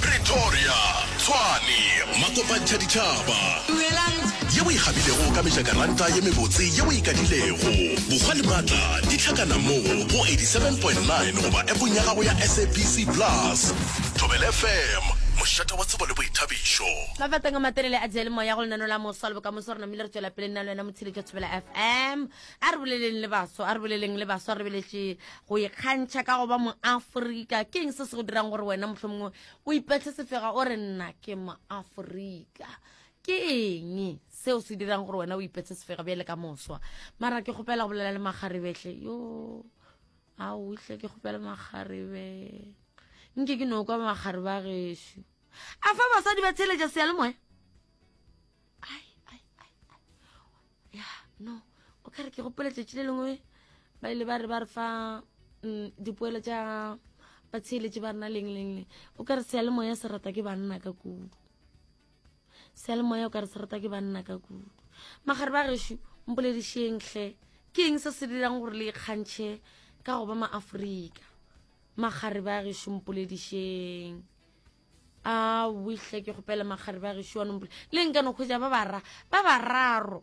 Pretoria, Tshwane, Makopantšha Ditšhaba. Dumelang. Ye o e kgabilego ka mejakaranta ye mebotse ye o e kadilego. Bokgwa le matla di hlakana mo go 87.9 goba appong ya gago ya SABC Plus. Thobela FM, mošate wa tsebo le boithabišo. Mafateng a matelele a diyalemoya go lenano la moswa le bokamoso re namile re tšwela pele nna le wena motshedi jwa thobela fm a re boleleng le baswa a re boleleng le baswa re beletše go ikgantšha ka go ba moaforika ke eng se se go dirang gore wena motlho mongwe o ipetlhe sefega o re nna ke moaforika ke eng seo se dirang gore wena o ipetse sefega bjale ka moswa mara ke kgopela go bolela le makgarebehle yo a otlhe ke kgopela makgarebe nke ke no kwa makgarebe a gešu a fa basadi ba tsheletša seyalemoya ya no o ka re ke gopola tšatši le lengwe ba ile ba re ba re fa mm, dipoelo tša batsheeletše ba rena leng leng leng o ka re seyalemoya se rata ke banna ka kudu seyalemoya o ka re se rata ke banna ka kudu magare ba gešo mpoledišeng hle ke eng se se dirang gore le ikgantšhe ka go ba maaforika magare ba gešo mpoledišeng a wihle ke kgopele magare ba gešo wa nompole le nka no kgwetsa ba bara ba bararo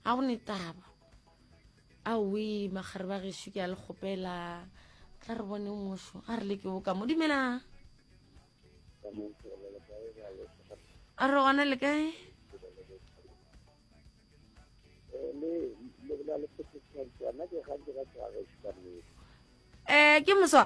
ga go ne taba a wi magare ba gešo ke a le kgopela tla re bone ngoso a re le ke boka mo dumelang a re gona le kae um ke moswa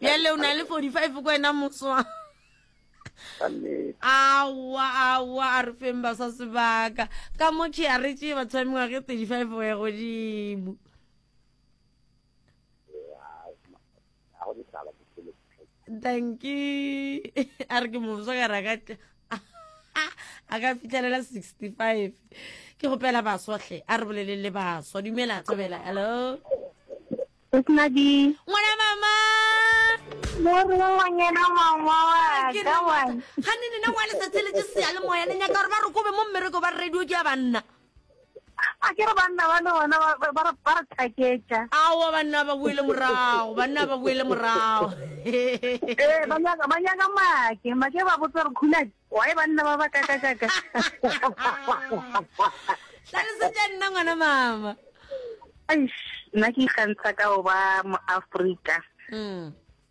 bjale o na le 45 ko wena moswa awa awa a re feng ba sa sebaka ka mo ke a re tše batho ba mengwage 35 go ya godimo a go ditaba ke selo danki a re ke mofsa ka ra ka a ka fitlhelela sixty five ke gopela baswatlhe a re bolele le baswa dumela thabela hello Madi. Ngwana mama. Mori wa ngwanyana mama wa ka wa. Ha ni nina ngwana sa tshele tse se ya le moya le nyaka re ba re kobe mo mmereko ba radio ke ya banna. a ke re banna ba le bona ba- ba- ba re- ba re thaketša aowa banna ba boele morago banna ba boele morago ee ba nyaka ba nyaka make make ba botsa gore khulane wae banna ba ba kakakaka tlhalosetša nna ngwana mama Eish, nna ke ikgantsha ka go ba moafrika Mm.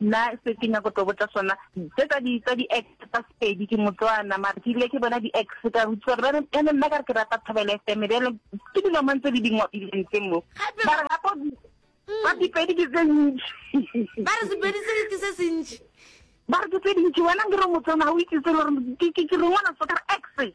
Nna se ke nyako tlo botsa sona tse tsa di tsa di ex tsa Sepedi ke Motswana mara ke ile ke bona di ex ka rutsa ba ne ene nna ka re ke rata Thobela FM be le ke dilo mang tse di dingwa di leng tse mo ba re gapo ba di pedi ke tse ntši ba re Sepedi se ke se sentši ba re ke tse dintši wena ke re Motswana ha o itse se le gore ke ke ke rengwana so ka ex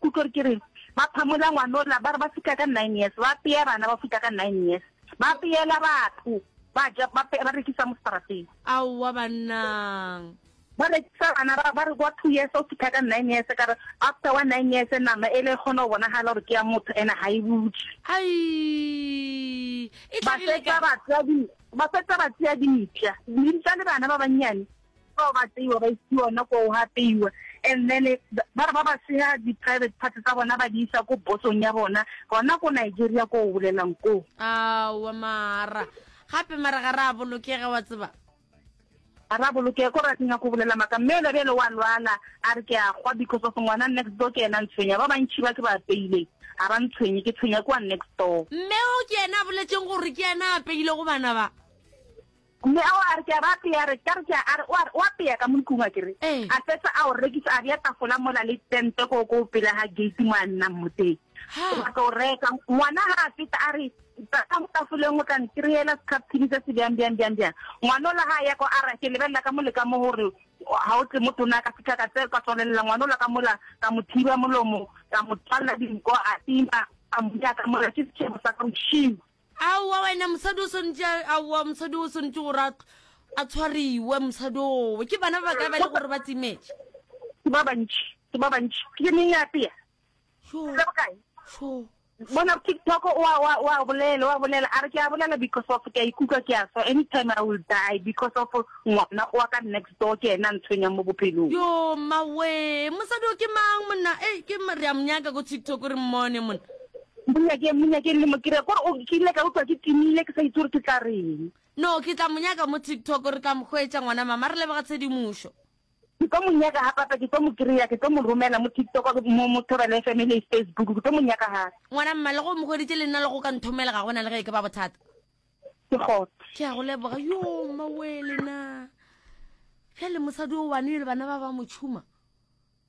Kutlor ke reng? Ba phamola ngwanola, ba re ba fihla ka nine years, ba apea bana ba fihla ka nine years, ba apeela batho, ba ja, ba ba rekisa mo strateng. Aowa bannang! Ba rekisa bana ba ba re kwa two years o fihla ka nine years, ka re after wa nine years nama ele e kgona go bonagala gore ke ya motho ene ga e butšwe. Aii! E Ba tlagile fetsa kae? ba tsea di, ba fetsa ba tsea dintša, dintša le bana ba bannyane Bao ba tseiwa ba isiwa ona ko go apeiwa and then ba re ba ba seha di-private parts tsa bona ba di isa ko bosong ya bona gona ko Nigeria ko o bolelang koo. Aowa mara gape mara ga re a bolokega wa tseba. Ga re a bolokega ko re a ke nyako bolela maka mme ela bjale wa lwala a re ke a gwa because of ngwana next door ke ena ntshwenya ba bantšhi ba ke ba apeileng ga ba ntshwenye ke tshwenya ke wa next door. Mme o ke ena a boletseng gore ke ena a apeilego bana ba? Mme a wa, a re, Ke a ba apea, a re, ka re, ke a, a re, o a re, o apea ka mo ntlong, a ke re, Ee. a fetsa a o rekisa, a bea tafola mola le tente koo, koo pela ga gate mo a nnang mo teng. Ha. Wa tlo reka. Ngwana ga a feta, a re, Tla ka mo tafoleng, o tla nkry-ela sekhapthini se se bjang, bjang, bjang, bjang. Ngwana ola ga a ya kwa, a re, Ke lebelela ka mo le ka mo gore ga o tle mo tona, a ka fitlha ka tse, ka tswalelela ngwana ola ka mola, ka mo thiba molomo, ka mo tswalela dinko, a tima, ka mo bea ka mola, ke setšhebo sa ka, bošego. Aowa wena mosadi o swanetše aowa mosadi o swanetše gore a a tshwariwe mosadi owe ke bana ba bakae ba le gore ba timetše ke ba bantši ke ba bantši ke le meng apea Sho, le bokae sho. bona tiktok o a- o a- o a bolela o a bolela a re ke a bolela because of ke a ikutlwa ke a swa anytime i will die because of ngwana wa ka next door ke ena a ntshwenyang mo bophelong yo mawe mosadi o ke mang monna e ke ma- re a monyaka ko tiktok re mmone monna Mo nyakeng, mo nyakeng le mo kry-e. Kore o, ke ile ka utlwa ke timile, ke sa itse gore ke tla reng. No, ke tla mo nyaka mo TikTok, re tla mo hwetša, ngwana mama. Re leboga tshedimošo. Ke tlo mo nyaka ga papa, ke tlo mo kry-a, ke tlo mo romela mo TikTok, mo, mo Thobela FM e le Facebook, ke tlo mo nyaka ga. Ngwana mma, le ge o mo hweditše, le nna le go ka nthomela, ga go na le ge e ke ba bothata. Ke got. Ke a go leboga. Yoo, mmawee lena. Bjale mosadi o one, le bana ba ba mo tšhuma.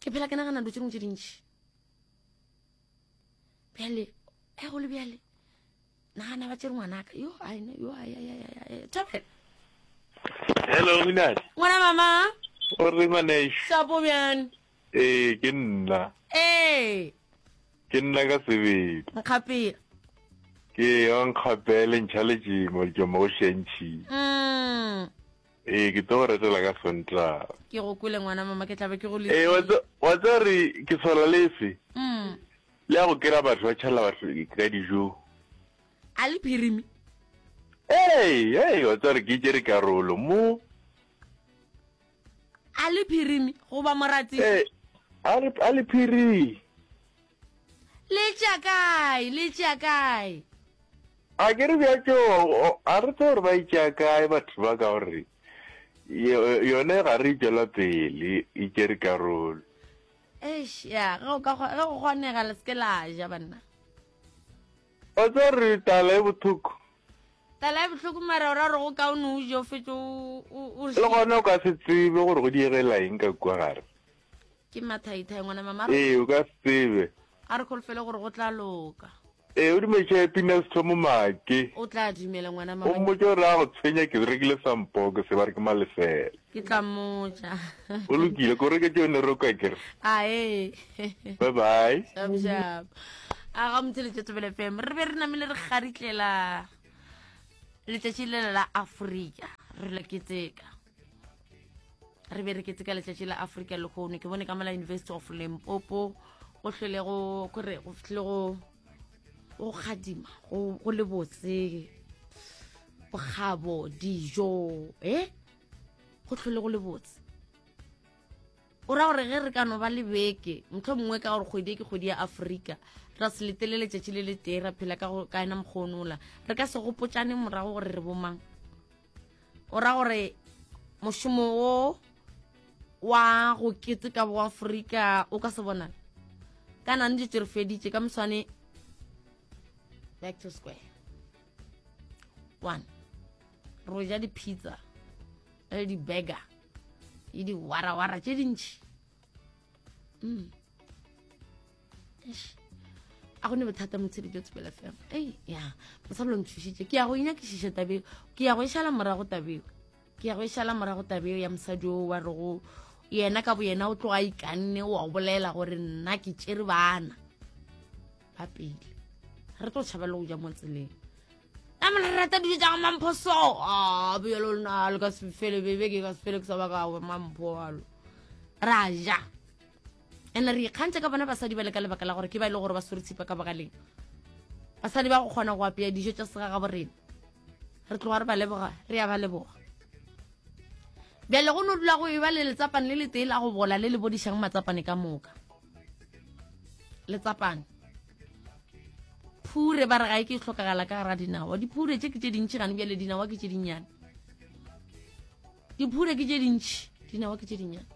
ke phela ke nagana dilo tse dingwe tse dintšhi bjale e go le bjale nagana ba tsere ngwanaka yo aina yo thabela hello minadi ngwana mama o re ngwaneso sapo bjane ee ke nna ee ke nna ka sebedi nkgapela ke yo nkgapele ntšha lejimo lejoma o šentšhile mm. Ee, ke tlo go retela ka Sontaga. Ke go kwele ngwana mama ke tlabe ke go le Ee, wa tsa re ke swala lefe? Mm. Le ya go kera batho ba tšhalela batho ka dijo. A le phirimi? Ee, ee, wa tsa re ke jere karolo mo. A le phirimi go ba moratsi? Ee, a le phirimi. le tša kae le tša kae a ke re bjatso a re tse gore ba itšea kae batho ba ka gore yone ga re itšwela pele e kere karolo eish ya ge go kgonega le seke la ja banna o tse re tala e bothoko tala e botlhoko mara o ra gore go kaone o jo fetso le gone o ka se tsebe gore go diegela eng ka kua gare ke mathaithai ngwana mama ee o ka se tsebe a re kholofele gore go tla loka ee o dumetše pina se thomo make o tla dumela ngwana o mama mmotse gore a go tshwenya ke rekile sampoko se ba re ke malefela ke tla mmotsa o lokile ko reke tšone roka kere ae bye bye šapšap a ga motse letšetsebele fm re be re namile re garitlela letšatši lela la afrika re la keteka re be re ketse ka letšatši la africa lehono ke bone ka mola university of limpopo go hlwelego kore go fihle go go kgadima go le botse bokgabo dijo e eh? go tlhole go le botse o ra gore ge re ka no ba le beke motlho mongwe ka gore kgwedi e ke kgwedi ya aforika ra se letele letšatši le le tee ra phela ka ena mokgonola re ka se gopotšane morago gore re bomang o ra gore mošomo wo wa go kete ka boafrika o ka se bonala ka nane dilo re feditše ka moswane back to square one ro ja di-pizza le di-burger le di-warawara tše dintšhi mm. a go ne bothata motshedi jo tsebela fela ei ya mosadi lo ntshusitse ke ya go inyakišiša tabeo ke ya go e šala morago tabeo ke ya go e šala morago tabeo ya mosadi o wa re go yena ka bo yena o tloga ikanne wa bolela gore nna ke tšere bana ba pele re tlo tšhabela go ja mo tseleng a mo rata dijo tsa go mampho so a bjalo lona le ka sefele bebe ke ka sefele ke sa baka mampho alo ra ja and re ikgantse ka bona basadi ba le ka lebaka la gore ke ba e le gore ba swere tshipa ka bogaleng basadi ba go kgona go apea dijo tša sega ga borena re tloga re ba leboga re ya ba leboga bjale go no dula go e ba le letsapane le letee la go bola le le bodišang matsapane ka moka letsapane phure ba re ga e ke tlhokagala ka gara dinawa diphure tse ke tse dintšhi gane bjale dinawa ke tse dinnyane diphure ke tse dintšhi dinawa ke tse dinnyane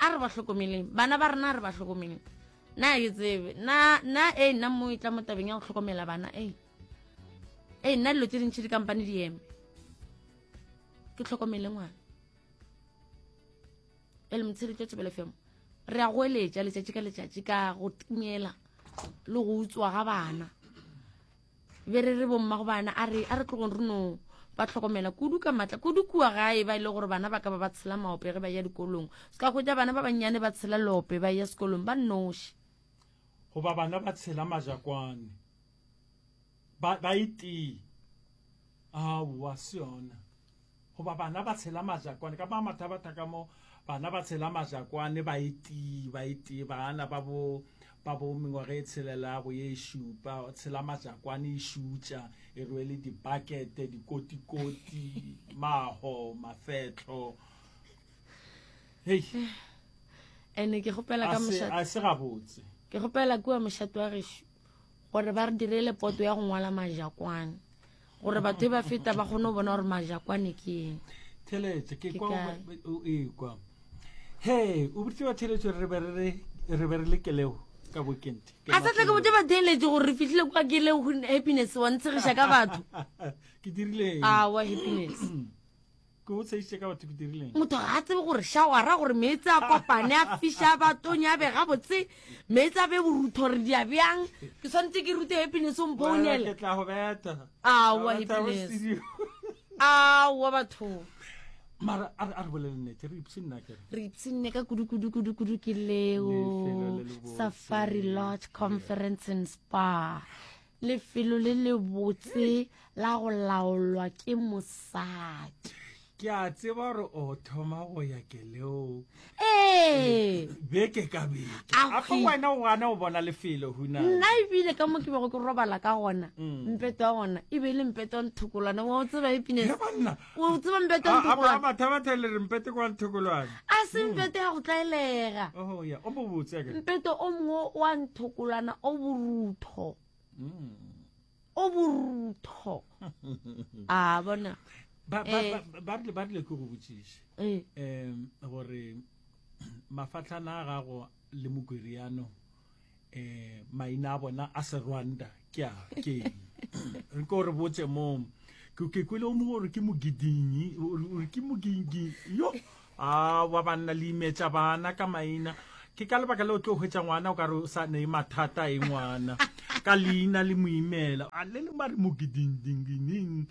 a re ba hlokomeleng bana ba rena a re ba hlokomeleng na ke tsebe na na e nna mo e tla mo tabeng ya go hlokomela bana e e nna dilo tse dintšhi dikampane di eme ke tlhokomele ngwana e le motsheletso tsebele femo re a go eletša letšatši ka letšatši ka go timela le go utswa ga bana be re re bomma go bana a re a re tlogong re no ba tlhokomela kudu ka matla kudu kua gae ba ile e gore bana ba ka ba ba tshela maope ge ba ya dikolong se ka hwetša bana ba bannyane ba tshela lope ba ya sekolong ba nnoši goba bana ba tshela majakwane ba, ba e tee Aowa, se yona. Goba bana ba tshela majakwane, ka ba mathabatha ka mo, bana ba tshela majakwane ba e tee, ba e tee, bana ba bo, ba bo mengwaga e tshelela ya go ye e šupa, tshela majakwane e šutša, e rwele dibakete, dikotikoti, maho, mafetlo. Hei. Ene ke gopela ka mošate. A se gabotse. Ke gopela kua mošate wa gešo. gore ba re direle poto ya go ngwala majakwane gore batho e ba feta ba kgone go bona gore majakwane ke eng theletše ke Ke kwa kae? o ekwa he o botse ba theletše re be re re- re be re le keleo ka bokente Ke a sa tle ke bote ba theeletse gore re fitlhile kwa ke le happiness wa ntshegiša ka batho ke dirileng awa happiness Ke go tsheisitše ka batho ke dirileng? Motho ga a tsebe gore shawara gore meetse a kopane a fiša ba tonya be ga botse meetse a be borutho re dia bjang ke tshwanetse ke rute happiness o mpounele Ke tla go beta. awa Ke tla go happiness studio. awa batho Mara a re- a re bolele nnete re ipse nna kere. re ipsenne ka kudukudukudukudu ke Lefelo leo le le botse. safari lodge conference and spa lefelo le lebotse la go laolwa ke mosadi ke a tseba gore o thoma go ya keleo ee beke ka beke Aowi. afa wena o gana o bona lefelo huna nna ebile ka mo ke bego ke robala ka gona mpeto wa gona e be e le mpeto wa nthokolwana wa o tseba epine He banna o tseba mpete a a ba batha batha le re mpete kwa nthokolwane a se hmm. mpete ya go tlaelega oh ya o bobotse ka mpete o mongwe wa nthokolwana o borutho hmm. o borutho a bona ba ba eh. ba re ba re ke go botsise eh. em gore mafatlhana a gago le mokwereano Eh, maina a bona a serwanda ke a keng? Re ko re botse mom. Ke ke kwele o mongwe gore ke mogidinyi, gore ke mogingi. Yo, a wa banna le imetša bana ka maina. Ke ka lebaka leo tlo hwetša ngwana o ka re o sa ne mathata e ngwana. Ka leina le moimela. A le le mare mogidinyi.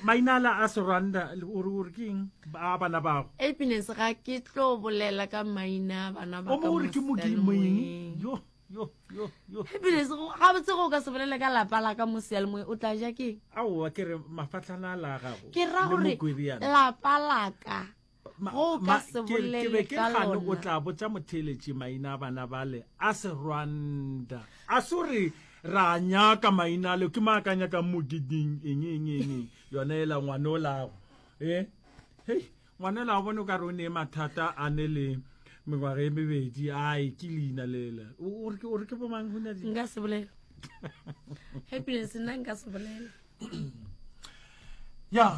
mainala a serwanda o re ore keng a bana bago happiness ga ke tlo bolela ka maina a bana ba o re ke modimo eng yo yo yo yo happiness ga botse go ka se bolele ka lapa la ka mo seya le moe o tla ja ke aowa ke re mafatlhana a la gago ke ra gore lapa la ka o ka se bolele ka lona o tla botsa motheeletši maina a bana bale a serwanda a se gore ra nyaka maina ale ke maa ka nyakang mogiding eng eng eng yona ela ngwane o lago e eh? hei ngwane o lago bone o ka re o nee mathata a ne le mengwaga e mebedi ai ke leina lela o re ke bomang go nyadi nka se bolela happiness nna nka se bolela ya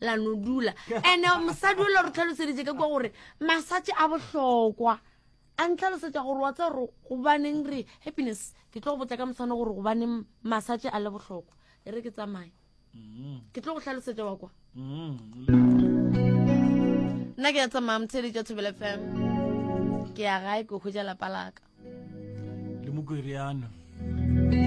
la no dula ande mosadi o le re tlhaloseditse ka kwa gore masatše a bohlokwa a ntlhalosetsa gore wa tsa gore gobaneng re happiness ke tlo go botsa ka moswane gore gobaneng masatše a le bohlokwa e re ke tsamaye mm-hmm. ke tlo go tlhalosetsa wa kwa mm-hmm. nna ke ya tsamaya motshedi tša thobele fm ke ya gae ke hwetsa lapa laka le mokwereano